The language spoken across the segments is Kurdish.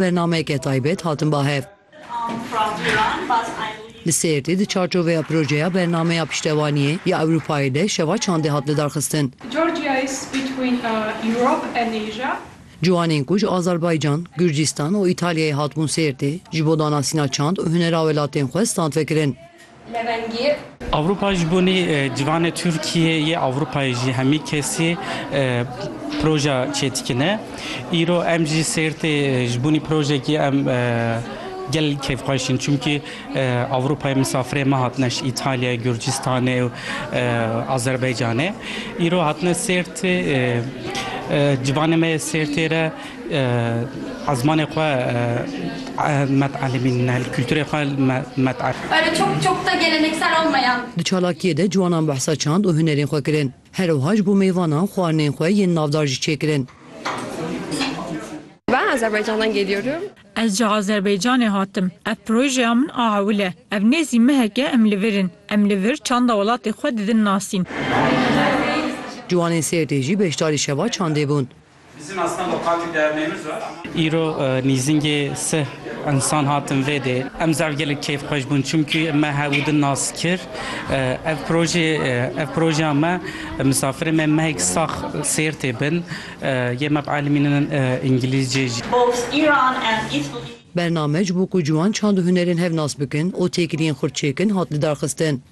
Bernameyeke taybet hatin ba hev. Li Sêrtê di çarçoveya projeya Bernameya Piştevaniyê ya Ewropayê de şeva çandê hat lidarxistin. Ciwanên ku ji Azerbaycan, Gurcistan û Îtalyayê hatibûn Sêrtê, ji bo danasîna çand û hunera welatên xwe stand vekirin. levengî. Ewropa ji bonê civanê Tirkiyê yê Ewropayê jî hemî kesî proja çêdikine. Îro em jî Sêrtê ji bonî projekî em gel kêfxweş in çimkî Ewropayê misafirê me hatine ji Îtalyayê, Gurcistanê û Azerbaycanê. Îro hatine Sêrtê civanê me yê Sêrtê re Azmanê xwe met elimîn ne kulturê xwe met er. Erê çok çok da geleneksel olmayan. Di çalakiyê de ciwanan behsa çand û hunerên xwe kirin. Her wiha ji bo mêvanan xwarinên xwe yên navdar jî çêkirin. Ben Azerbaycan'dan geliyorum. Ez ji Azerbaycanê hatim. Ev projeya min a hewil e. Ev nêzî mehek e em li vir in. Em li vir çanda welatê xwe didin nasîn. Ciwanên Sêrtê jî beşdarî şeva çandê bûn. Îro nîzingê sih insan hatin vê dê. Em zaf gelek keyfxweş bûn çimkî me hev û di nas kir. Ev projê ev projeya me misafirê me mehek sax sêr tê bin. Yê me bi elmînin îngilîzcê jî. Bername ji bo ku ciwan çand û hunerên hev nas bikin û têkiliyên xurt çêkin hat lidarxistin.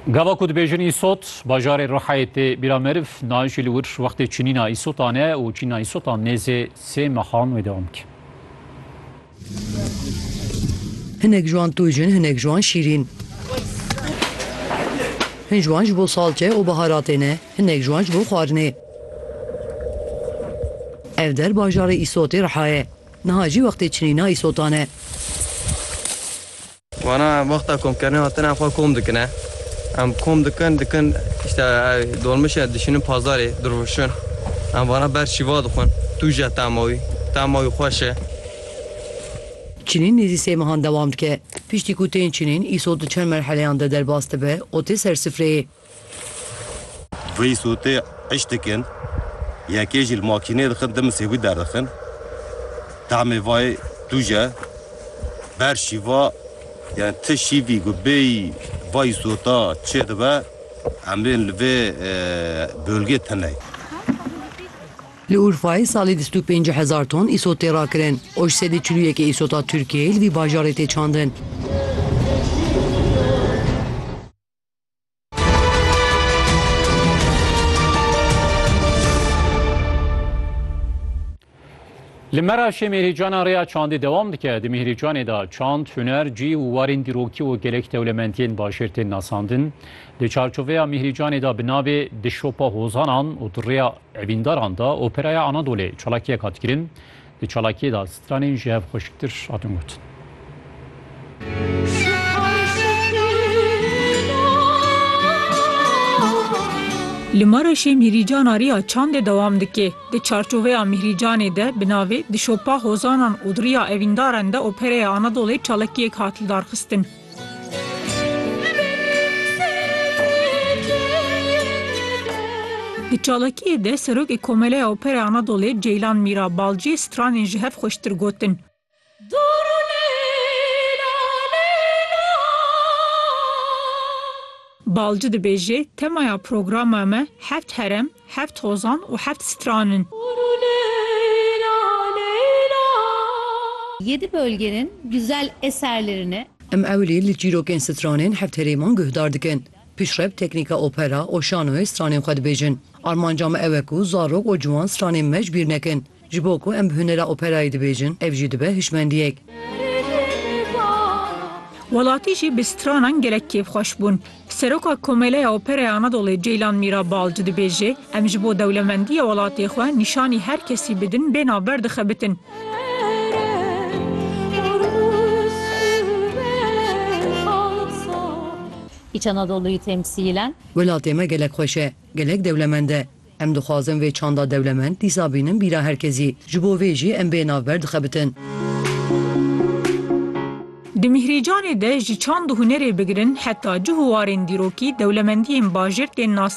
Gava ku dibêjin îsot, bajarê Rihayê tê bîra meriv, nayê jî li wir wextê çinîna îsotan e û çinîna îsotan nêzê sê mehan wê dewam dike. Hinek ji wan tûjin, hinek ji wan şîrîn. Hin ji wan ji bo salçe û biharatê ne, hinek ji wan ji bo xwarinê. Ev der bajarê îsotê Riha ye. Niha jî wextê çinîna îsotan e. Wana wexta komkirinê hatin em xwe kom dikin e. Em kom dikin dikin işte dolmişe dişinin pazarê dirûşin. Em vana ber şîva dixwin. Tu je tema wî. Tema wî xweş e. Çinîn nêzî sê mehan dewam dike. Piştî ku tên çinîn, îsot di çend merheleyan de derbas dibe û tê ser sifreyê. Vî sûtê iş dikin, yekê jî li makînê dixin dimisê wî derdixin. Tahmê vayê tûj e. Ber şîva yani ti şîvî ku bêyî vayî sûta çê dibe em bên li vê bölgê teney. Li Urfayê salî bîst û pênc hezar ton îsot tê rakirin û ji sedî çil û yekê îsota Tirkiyeyê li vî bajarê tê çandin. Li Meraşê mêrîcana rêya çandê dewam dike. Di mêrîcanê de çand, huner, cî û warên dîrokî û gelek dewlemendiyên bajêr tên nasandin. Di çarçoveya mêrîcanê de bi navê Di şopa hozanan û di rêya evîndaran de operaya Anadolê çalakiyek hat kirin. Di çalakiyê de stranên ji hev xweşiktir hatin gotin. Li Mereşê mîhrîcana Riya Çandê dewam dike. Di çarçoveya mîhrîcanê de bi navê Di şopa hozanan û di riya evîndaran de opereya Anadolê çalakiyek hat lidarxistin. Di çalakiyê de Serokê Komeleya Opera Anadolê Ceylan Mîra Balcî stranên ji hev xweştir gotin. Balci dibêje, Temaya programa me heft herem, Heft hozan û heft stran in. Yedi bölgenin güzel eserlerini. Em ewilî li çîrokên stranên heft herêman guhdar dikin. Pişrev teknîka opera û şanoyê stranên xwe dibêjin. Armanca me ew e ku zarok û ciwan stranên me ji bîr nekin. Ji bo ku em bi hunera operayê dibêjin, ev jî dibe hişmendiyek. Welatî jî bi stranan gelek kêfxweş bûn. Seroka Komeleya Operaya Anadolê Ceylan Mîra Balci dibêje, Em ji bo dewlemendiya welatê xwe nîşanî her kesî bidin bê navber dixebitin. Îç Anadoluyî temsîlen. Welatê me gelek xweş e, gelek dewlemend e. Em dixwazin vê çanda dewlemend dîsa bînin bîra her kezî. Ji bo vê jî em bê navber dixebitin. Di Mîhrîcanê de ji çand û hunerê bigirin heta cih û warên dîrokî dewlemendiyên bajêr tên nasan.